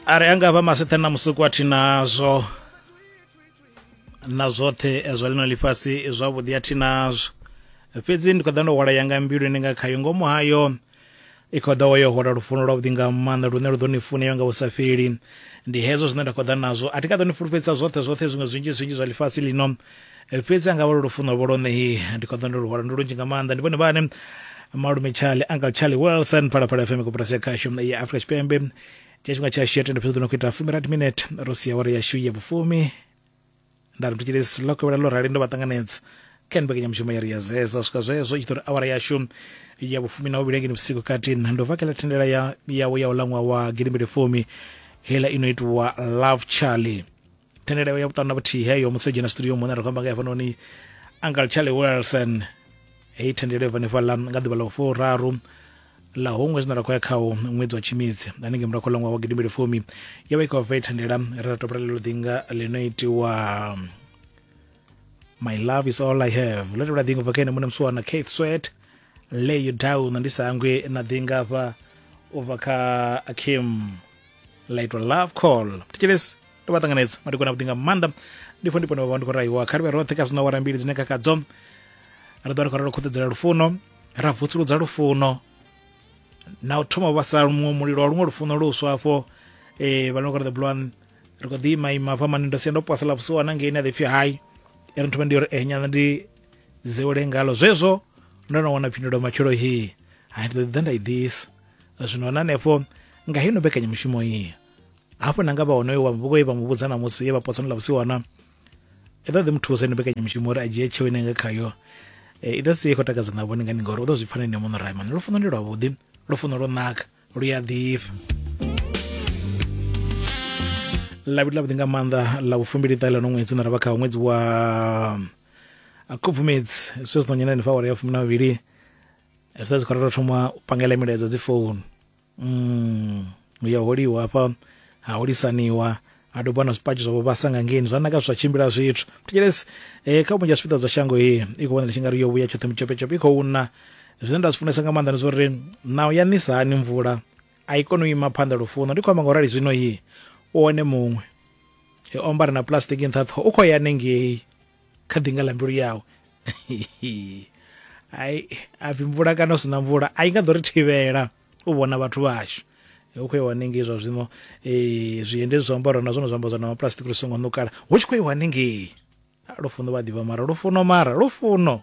are anga vha masethe na musuku a thi nazwo na zwoṱhe zwa lino ḽifhasi zwavhuḓi a thi nazwo fhedzi ndi khou ḓa ndo hwala yanga mbiluni nga khayo ngomu hayo i khou ḓa yo hwala lufuno lwavhuḓi nga maanḓa lune lu ḓo ni funeyo nga u sa fheli ndi hezwo zwine nda khou ḓa nazwo a thi ka ḓo ni fulufhedzisa zwoṱhe zwoṱhe zwiṅwe zwinzhi zwinzhi zwa ḽifhasi lino fhedzi anga vha lwo lufuno vho lone hi ndi kho ḓo ndo luhwala ndi lunzhi nga maanḓa ndi vhone vhane malume charlie uncle charlie wilson phalaphala fm koporasi ya khashu ya afrika tshipembe tsha tshifhinga tsha shiyo tenda fhedzi no kuita fumi rat minute ro sia wari ya shu ya vhufumi nda ri ndi tshile silo ko vhela lo rali ndo vha tanganedza kha nibeke nyamushumo ya ri ya zeza swika zwezo i tshitori awara ya shu ya vhufumi na uvhilengeni vhusiku kati ndo vakela thendela ya yawo ya u langwa wa gidimbili fumi hela ino itiwa love charlie thendeleo ya vhuṱanu na vhuthihi heyo musi o dzhena studio muṋe ra khou amba nga hafhanoni uncle charlie wilson heyi thendelo yo vanefhala nga ḓuvha ḽa u furaru ḽa huṅwe zwine ra khou ya khawo ṅwedzi wa tshimidzi hanengei murahu khola ṅwaha wa gidimbili fumi yo vha i khou bva i thendela ri ra topela lelo ḓinga ḽino itiwa my love is all i have ḽo tevhela ḓinga ubva kha ene muṋe musiwana cath swet lay you down ndi sa hangwi na ḓinga hafha ubva kha akim ḽa itwa love call thetshelesi ndo vha ṱanganedza madekwana vhuḓi nga maanḓa ndi fo ndi pone vha ndi khou raiwa kha ri vhe roṱhe kha zwino wara mbili dzine khakhadzo ri ḓo ri khou ralo khuṱedzela lufuno ra vutsuludza lufuno na u thoma vha sa muṅwe mulilo wa luṅwe lufuno luswa hafho um eh, vha no kora the bloan ri khou ḓi ima ima fha mani ndo sia ndo posela vhusiwana ngei ni a ḓipfi hai i ri nthoma ndi uri eh nyana ndi dzewele ngalo zwezwo ndo no wana phindulo matshelo he hai ndi ḓo ḓa nda i ḓisa zwino na hanefho nga hino mbekanyamushumo iyi hafhu na nga vha honoyo wa muvhuko ye vha mu vhudza na musi ye vha potsano ḽa vhusiku hona i ḓo ḓi mu thusa ino mbekanyamushumo uri a dzhie tsheo ine nga khayo i ḓo si i khou takadza na vhone ngani ngauri u ḓo zwi pfana ene muṋe raimani lufuno ndi lwavhuḓi lufuno lwo naka lu ya ḓifha lavhili lavhuḓi nga maanḓa ḽa vhufumbili ṱahe ḽa no ṅwedzi na ravha kha ṅwedzi wa khubvumedzi zwe zwi ḓo nyana henefha awara ya fumi na vhavhili zwi ḓa zwi khou ralo thoma u pangela milaedza dzi founu Mm, hu ya holiwa hafha ha holisaniwa ha dobiwa na zwipatshi zwavho vhasa nga ngeni zwa naka zwa tshimbila zwithu thetshelesi eh, kha vhunzhi ha zwipiḓa zwa shango iyi i khou vhonela tshi nga ri yo vhuya tshoṱhe mutshopetshop i khou na zwine nda zwi funesa nga maanḓa ndi zwa uri naho ya nisa hani mvula a i koni u ima phanḓa lufuno ndi khou amba nga u rali zwino yi u one muṅwe he omba ri na plastic nṱha ṱhoho u khou ya nengei kha ḓinga ḽa mbilu yawe ai a pfhi mvula kana u sina mvula a i nga ḓo ri thivhela u vhona vhathu vhashu hu khou iwa hanengei zwa zwino um zwiende zwi zwiambaro na zwone zwiambaro zwa na maplastic lu songo ṋukala hu tshi khou iwa hanengei lufuno vha ḓivha mara lufuno mara lufuno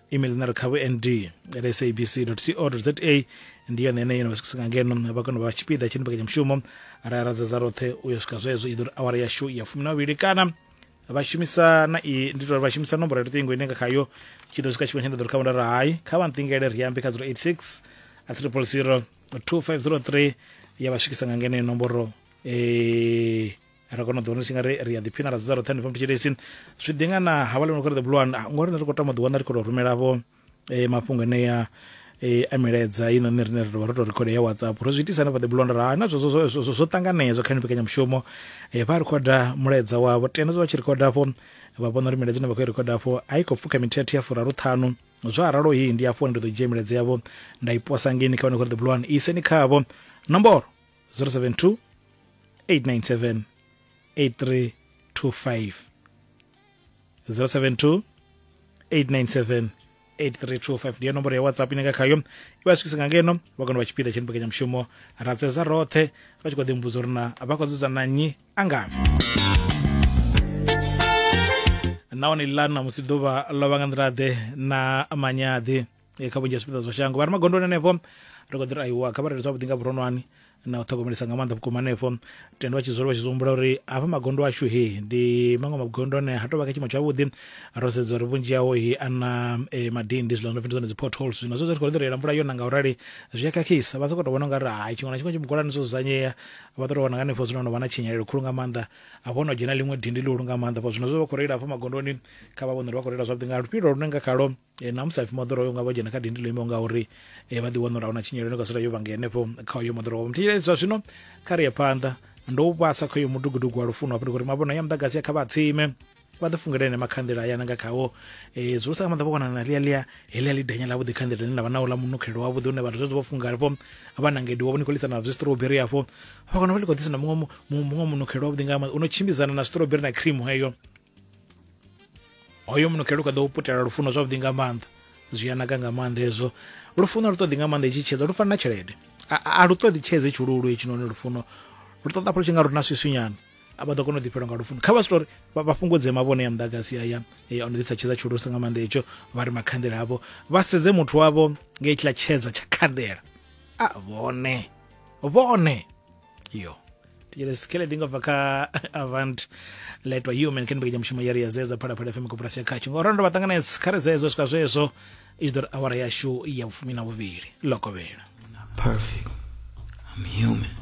email na ri kha vhnd at sabc co za ndi yone ine yo no vha swikisa nga ngeno vha kona u vha tshipiḓa tsha mbekanyamushumo ra ya radzedza roṱhe u ya swika zwezwo i ḓo ri awara yashu ya fumi na vhili kana vha shumisa na i ndi tori vha shumisa nomboro ya luṱingo ine nga khayo tshi ḓo swika tshifhinga tsha nda ḓo ri kha vhunda ra hai kha vha nṱingele ri ambe kha 086 a triple zero 2503 ya vha swikisa nga ngeno nomboro eh ri kona u ḓiwana tshi nga ri ri a ḓiphina ra dzidza roṱhe hanefha mutshilesi zwi ḓi nga na havha lino kha ri the blue one ah, ngori ri khou tama ḓiwana ri khou tou rumela vho eh, mafhungo enea eh, a milaedza ino nṋe rine ri tovha ro tou rekhoda ya whatsapp ro zwi itisa hanefha the blue one ra na zwo- zwo- zwo- zwo- zwo- zwo ṱanganedzwa kha ni mbekanyamushumo Eh, vha rekhoda mulaedza wavho tenda zwa vha tshi rekhoda afho vha vhona uri milaedza ine vha khou i rekhoda afho a i khou pfuka mithethe ya furaru ṱhanu zwo aralo hii ndi afho ndi ḓo dzhia milaedza yavho nda i posa ngeni kha vhane khori the blue one i iseni khavho nomboro 072 897 8325 072 897 8325 ndiyo nomboro ya whatsapp ine nga khayo iwa swikisa nga ngeno vha kona vha tshipiḓa tsha mbekanyamushumo ra tsedza roṱhe vha tshi khou ḓimbudza uri na vha khou dzedza na nnyi a ngavhi nahone lilani na musi ḓuvha ḽo vha nga nḓila ḓe na manyaḓi eh, kha vhunzhi ha zwipiḓa zwa shango vha re magondoni hanefho ri khou ḓi ri aiwa kha vha rere zwavhuḓi nga vhuronwane na u ṱhogomelisa nga maanḓa vhukuma hanefho tenda vha tshi dzula vha tshi zwi humbula uri hafha magondo ashu he ndi maṅwe magondo ane ha tou vha kha tshiimo tshavhuḓi ro sedza uri vhunzhi hawo he a na eh, madindi zwiḽa zwo pfi ndi dzone dzi potholes zwino zwe zwa tshi khou ri ḓirela mvula yona nga u rali zwi a khakhisa vha sokou tou vhona u nga ri hai tshiṅwe na tshiṅwe tshimugolani zwo dzudzanyea vha ḓo tou vhona nga hanefho zwino no vha na tshinyalelo khulu nga maanḓa hafho ho no dzhena ḽiṅwe dindi ḽihulu nga maanḓa fho zwino zwe vha khou reila hafha magondoni kha vha vhone uri vha khou reila zwavhuḓi nga lufhilo lune nga khalo Na musi hapfi moḓoro hoyo nga vho dzhena kha dindi ḽo imaho nga uri vha ḓi wana uri ahuna tshinyelo ine ka sala yo vhange henefho kha hoyo moḓoro wavho muthu zwa zwino kha ri ye phanḓa ndo u vhasa kha hoyo mudugudugu wa lufuno hafho ndi khou ri mavhono ya muḓagasi ya kha vha tsime vha ḓi fungela ene makhanḓela aya nanga khawo um zwi sa nga maḓa vho konana na ḽia ḽia heḽia ḽi denya ḽavhuḓi khanḓela ḽine ḽa vha na uḽa munukhelo wavhuḓi une vhathu zwezwo vho funga halifho vha nangedi wavho ni khou lisa na zwi strawberry hafho vha kona vha ḽi khou ḓisa na muṅwe muṅwe munukhelo wavhuḓi nga maanḓa u no tshimbidzana na strawberry na cream heyo hoyo munukhe lu kha ḓo putela lufuno zwavhuḓi nga maanḓa zwi a naka nga maanḓa hezwo lufuno lu ṱoḓi nga maanḓa itshi tshedza lu fana na tshelede a lu ṱoḓi tshedze tshululu hetshinoni lufuno lu ṱoḓa pfolo tshi nga lu na swiswinyana a vha ḓo kona u ḓifhelwa nga lufuno kha vha switori vha fhungudze mavhone ya muḓagasi aya ya ono ḓisa tshedza tshulusa nga maanḓa hetsho vha ri makhanḓela avho vha sedze muthu wavho nga itshiḽa tshedza tsha khanḓela a vhone vhone iyo tichele sikele ndingabva kha avant letwa human khe ndibekenya mushumo yari ya zeza phalaphala fm koporasi ya khatsho ngauri ndo vhaṱanganedza kha ri zezo u swika zwezwo i tshi ḓo ri awara yashu ya vhufumi na vhuvhili lokovhela Perfect. I'm human.